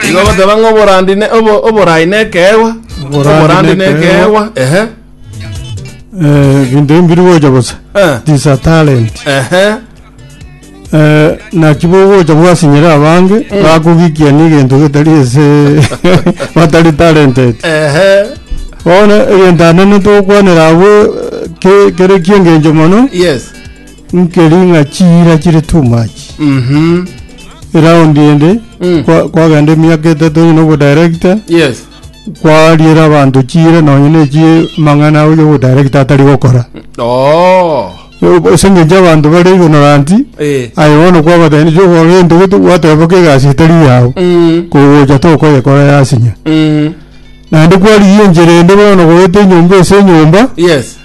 Igo goteba ng'a oborandi ne obo, oborai ne ekeegwa. Oborandi Oborandi ne ne ekeegwa. ekeegwa. Ehe. Eh, ebinto ebi mbiri gocha bosa Eh. it is a talent Ehe. Eh, naki bogocha bwasinyera abange bakogikia n'egento getari ase batari talented Ehe. bono egento anene togokwanera abwo eh, ke- kere kiengencho mono Yes. Nkeri ng'a chiira chire too much. Mhm. Eround ende Mm. kwa- kwagenda emiaka etato onye na obodaerekita Yes. kwariera abanto chiira nonye na echi mang'ana oyo obodaerekita atari gokora Oh. ase eng'encho abanto bare ignorant Eh. aye bono kwabatebia igo okora egento gete gwateba boka egasi etari yao Mm. kogocha tokoyekora yasinya Mm. naende kwarigia enchera ende bono goeta enyomba ase enyomba Yes.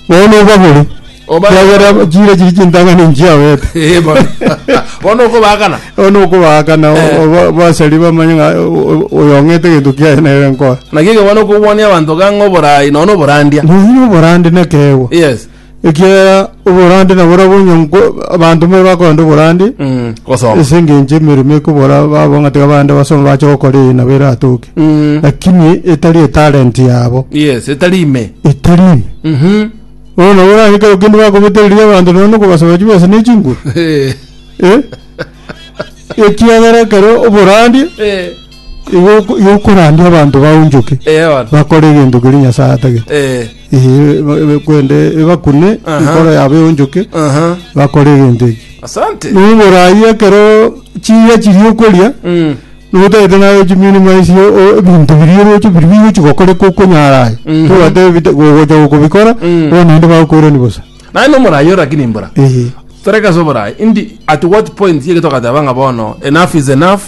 bono obagore Obare- Ekiagera chire chiri chintang'ani nchiawete. Eh, bono. Bono okobakana. Bono okobakana Eh. oba- basari bamanye ng'a o- o- oyo ong'ete egento kiaye nere nkora. Naki ekero bono okobwania abanto gang'a oboraai nono oborandia. Nonya oborande nekeegwa. Yes. Ekiagera oborande nabo orabwo onye nko- abanto mbare bakorande oborande Mm, Gosoma. ase engencho emeremo ekobora babo ng'a tiga bande basome bache gokora eye nabo eratoke. Mm, Lakini etari etalent yabo Yes, etari ime. etari ime. Mhm. Bono nabo orarekerwe kende bakobetereria abanto nonya nokobasaba chibesa ne chinguru? Eh, Eh? Ekiagera ekero oborandie, eh, igo oko- igo okorandia abanto baonchoke, eh, bono. bakore egento keria Nyasae atagete. Eh, Eh, ba- ba- kwende ebakune Aha. enkoro yabo eonchoke, aha. bakore egento eki. Asante. Noborai ekero chiria chiria okoria, Mm. Notagete naye chimirimo esio o- ebinto biria oroche biria bigochi gokorekwa okonyara aye. Mhm. Tobwate bite- gogocha gokobikora, Mm. bono naende bakoirani bosa. Naye nomorayi ore lakini mbora Ee. toreke ase oborayi indi at what point yeke togateba ng'a bono enough is enough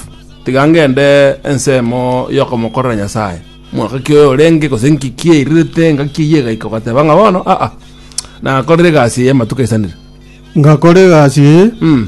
tiga ngende ensemo yokomokorera nyasaye mwaka ki oyo orenge gose nki ki eirirete ngaki eyio egaika ogateba ng'a bono aa nakorire egasi eye amatuko aisanire Ngakora egasi eye, mm.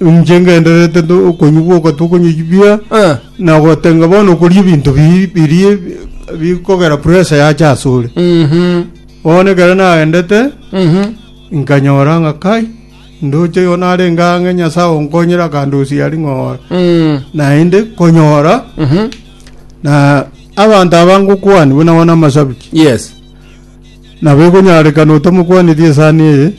Inche ngendererete to- okonywa boka tokonywa chibia Eh. na gotenga bono okoria ebinto bi- biria bikogera pressure yacha ase ore Mhm. bono ekero naendete Mhm. nkanyora ng'a kai ndoche igo narenge ang'e nyasae onkonyire akandosia aria ng'ora Mm. naende konyora Mhm. na abanto aba ngokwani buna bono amasabiti Yes. nabo ekonyarekana otamokwaneti esani eye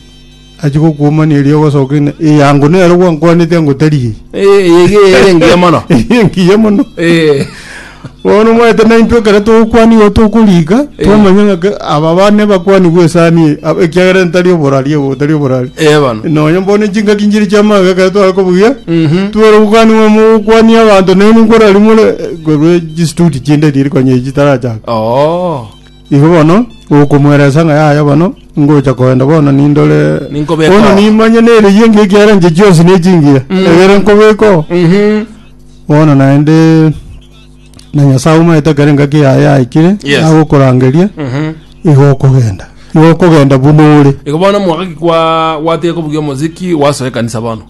Achia gokuomania erio ogosoka ina. Eh, yango nero gwankwanete ango tari eye. Eh, eye iga eye ere engiya mono. Eye engiya mono. Eh, Bono omanyete na intwe ekero togokwania igo tokorika, twamanya ng'a ke- aba bane bakwanigwe esani eye, ab- ekiagera ntari oborari obo, tari oborari. eh, bono. Nonya bono chingaki nchiri chiamanga ekero tware kobugia, Mhm. twere gokaniwa mogokwania abanto naende nkorari more eh, korwa chistuti chinde riria rikonya echi chitarachaka. Oh. Igo bono okomoereesa ng'a yaya bono ngocha koenda bono nindore Ninkobeka bono oo. nimanye nere yenge ekiagera inche chionsi ne chingira Mm. egere nkobeka oo. Mhm. bono naende na nyasae omaete ekero engaki yaye yaikire Yes. agokorangeria Mhm. igo okogenda igo okogenda buna ore Igo bono mwaka ki kwa gwatire kobugia omoziki wasoa ekanisa bono.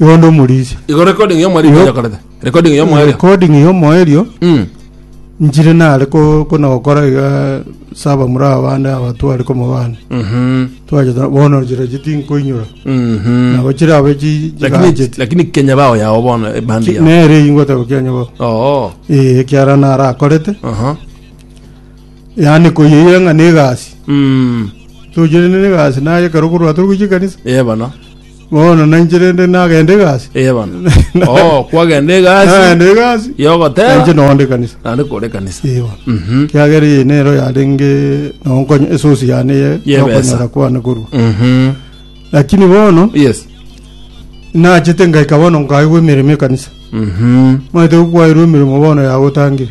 Igo onde omorisia. Igo recording ya mwarimu Yo- yakorete. Recording ya mwarimu. Recording y'omoerio Mm. nchire nare ko- kona gokora iga saba muri abande aba tware komobana Mhm. twacheta bono chira chiti nkoinyora Mhm. nabo chire abe chi- Lakini chigacheti lakini Kenya bao yao bona eh, bandi yao. nere ingota gokianya bo Oh. ee kiara nara akorete Aha. yani koyeira ng'a negasi Mm. tochire ne negasi naye kero korwa turi gochia kanisa Yeah bana. Bono nainche rende nagende egasi. Eye bono. Oh, kwagenda egasi. Nagende egasi. Yogoteba. Nainche nonde kanisa. Nande kore kanisa. Eye bono. Mhm. Kiagera eye nero yarenge nonkonye esosi yane ye yokonyora kwane korwa. Mhm. Lakini bono. Yes. Nachete ngaika bono nkaigwe emeremo ekanisa. Mhm. Mwete gukwairwe emeremo bono yagotangire.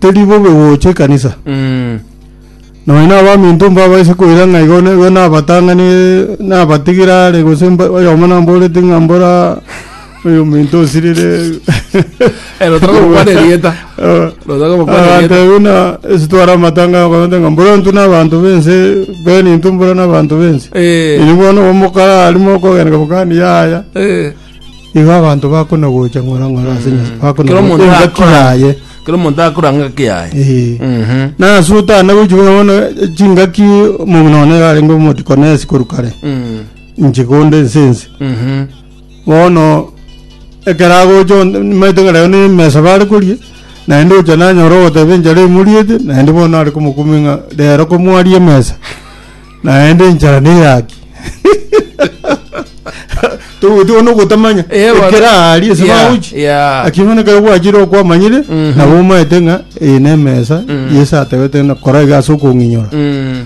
Teri bobe gocha ekanisa. Mm. Nonya na abaminto mbabaise koira ng'a igo nigo nabatang'ani nabatigire are gose mba- oyomo namborete ng'a mbora oyo minto osirire Eh, notaka gokwana erieta. Eh, Notaka gokwana abanto erieta. ebi na esitwara amatanga akonete ng'a mbora ntu n'abanto bense beni ntu mbora n'abanto bense Eh, ini bono omokara arimo okogeneka bokani yaya eh. Igo abanto bakonagocha ng'ora ng'ora ase nyomba, Kera bakonagocha omonto engaki akora yaye. Kera omonto akora ngaki yaye. Eh. Mhm. Nase otana gochia buna bono eh, chingaki omonto nonya yarenge omodikoni ase korwa kare Mm. inche konde ense ense Mhm. bono ekero agocha on- nimaete ng'a rero nemesa bare koria naende ocha nanyora ogoteba enchara emoriete naende bono are komokumia ng'a rero komwaria emesa naende enchara neyaki togotiga bono ogotamanya Eh, bara- ekero aari ase Yeah, maochi yeah. lakini bono ekero gwachire okwamanyire Mhm. nabo omaete ng'a eye na emesa Mm. yesu atebete ng'a kora iga ase okong'inyora Mm,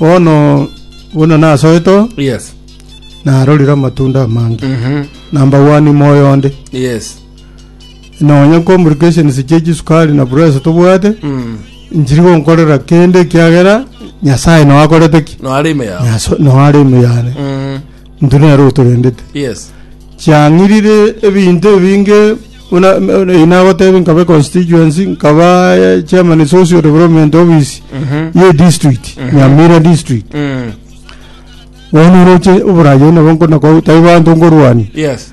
bono bono nasoeto yes narorire amatunda amange Mhm. namba wani moyo onde yes Nonya complications chia chisukari na pressure tobwate, Mm. nchiri gonkorera kende ekiagera Nyasae nao akorete ki? No are ime yao. Nyaso- nao are ime yane. Mm. Intwe nere otorendete. Yes. chiang'irire ebinto ebinge buna inagoteba nkaba constituency nkaba eh, chairman of social development office Mhm. ye district nyamira district Mm. bono roche oborayo nabo nkona ko tai bantu ngorwani Yes.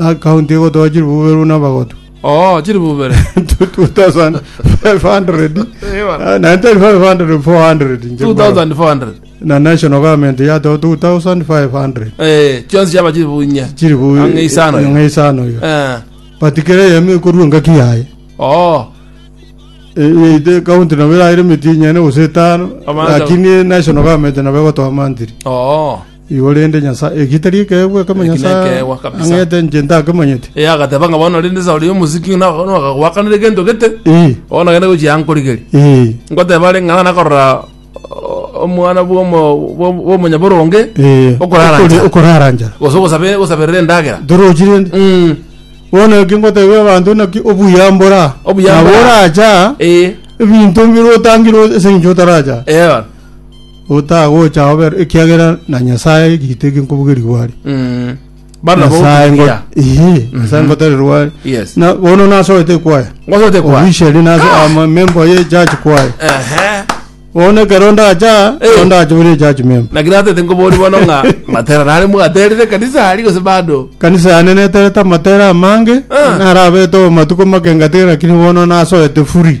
Account egotoa chiribubere buna abagotu. Oo, chiribubere. 2500 Eh, bana. ah, na tari 500 400 nche mbaro. 2400. na national government yatoa 2500 Eh, chionsi chiaba chiribunye. chiri bu Ang'e isano. ng'eisano yo Eh. but kere yemi korwa ngaki yaye Oo. ite county nabo iraire mitinyene gose etano Amanda. lakini national government nabo egotoa mantiri Oo. Igo rende Nyasae, eki tari ekeegwa ekemo Eki Nyasae nekeegwa kabisa. ang'ete inche ntakemanyeti? Ee, agateba ng'a bono rende Sauli omosiki ng'a naka- nakagoakanera egento gete, Ee, bono nagende gochia ankorigerie. ee, Ngoteba are ng'a nakorora o- omwana bw'omo- bw'o- bw'omonyaboronge ee. okorara Okori- nchara, okorara nchara. gose ogosabe- ogosaberera endagera. Torochi rende. Mm, Bono eki ngotebia abanto naki obuya mbora. Obuya Nabo mbora. oracha, ee, ebinto mbire otangire ase eng'encho otaracha. ee, Otagocha ober, ekiagera na Nyasaye egito eke nkobogerigwa are. Mm. Bana Nyasaye ngo- bogotugiria. Ehe, Nyasaye ngotererwa are. Yes. Na bono nasoete kwaya. Ngosote kwa. Officially nase ama member ye church kwaya. Ehe. Bono ekero ndacha, Eh. bono ndacha bore church member. Lakini hata tengobori bono ng'a matera nare mwaterire kanisa ari gose bado. kanisa yane neterete amatera amange Ah. narabete omatuko make ngatigere lakini bono nasoete furi